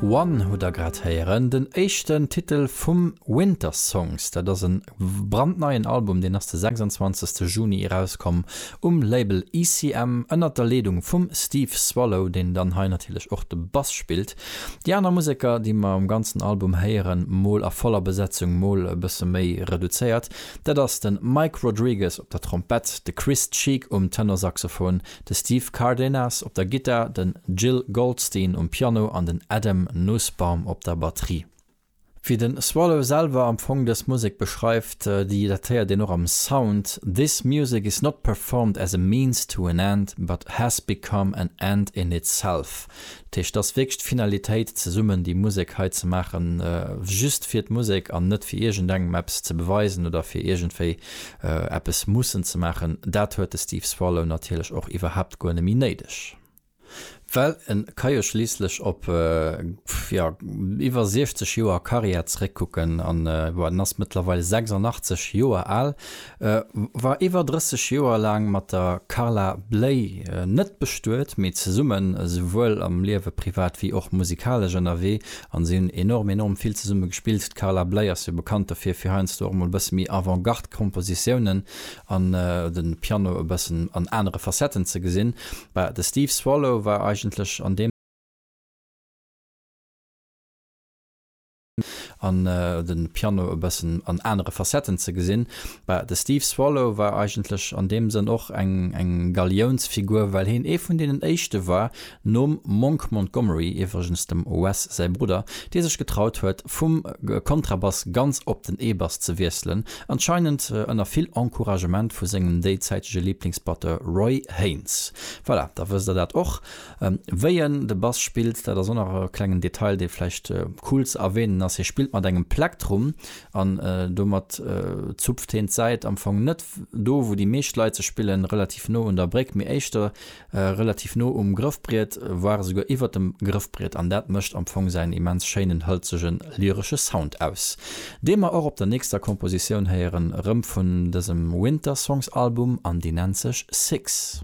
One hutt der grad héieren, den éischten Titel vum Winter Songs. Dat ass e brandneien Album, deen ass de 26 Juni erauskomm um Label ECM ënnert der Leedung vum Steve Swallow, deen dann hei natierlech och de Bass spillt. Déi aner Museker, déi mer um ganzen Album héieren, mol a voller Besetzung, mol e bësse méi reduzéiert, dat ass de Mike Rodriguez op der Trompett, de Chris Cheek um Tenorsaxophon, de Steve Cardenas op der Gittar, den Gil Goldstein um Piano an den Adam Nussbaum op der Batterie. Wéi den Swallow selwer am Fong dës Musek beschreift, déi datéiert een och am Sound, This music is not performed as a means to an end, but has become an end in itself. Dat heescht, et ass wierklech d'Finalitéit, zesummen déi Musek hei ze maachen, just fir d'Musek an net fir iergendengem eppes ze beweisen oder fir iergendwéi eppes mussen ze maachen. Dat huet de Steve Swallow natierlech och iwwerhaapt guer net méi néideg. Well e ka jo schliisslech op, jo, iwwer 60 Joer Karriär zeréckkucken, an, jo, en ass mëttlerweil 86 Joer al, E war iwwer 30 Joer laang mat der Carla Bley net bestuet, mee zesummen esouwuel am Liewe privat wéi och musikalesch ënnerwee an si hunn enorm enorm vill zesumme gespillt. D'Carla Bley ass jo bekannt dofir, fir heiansdo och mol e bësse méi Avant-Garde Kompositiounen an de Piano e bëssen an anere Facetten ze gesinn. Bah, de Steve Swallow war eigentlech an deem. an de Piano e bëssen an anere Facetten ze gesinn. De Steve Swallow war eigentlech an deem Sënn och eng Galiounsfigur, well heen ee vun deenen éischte war, nom Monk Montgomery, iwwregens dem Wes säi Brudder, dee sech getraut huet, vum Kontrabass ganz op den E-Bass ze wiesselen, anscheinend ënner vill Encouragement vu sengem déizäitege Liiblingsbatteur Roy Haynes. Voilà, da wësst der dat och. Wéi en de Bass spillt, dat ass och nach e klengen Detail, dee vläicht cool ze erwänen ass, hie spillt mat engem Plektrum an domat zupft heen d'Säit am Fong net do, wou déi meescht Leit se spillen, relativ no un der Bréck, mee éischter relativ no um Grëffbriet, voire esouguer iwwert dem Grëffbriet an dat mécht am Fong säin immens schéinen, hëlzege, lyresche Sound aus, dee mer och op der nächster Kompositioun héieren, erëm vun dësem Winter Songs Album an déi nennt sech Six.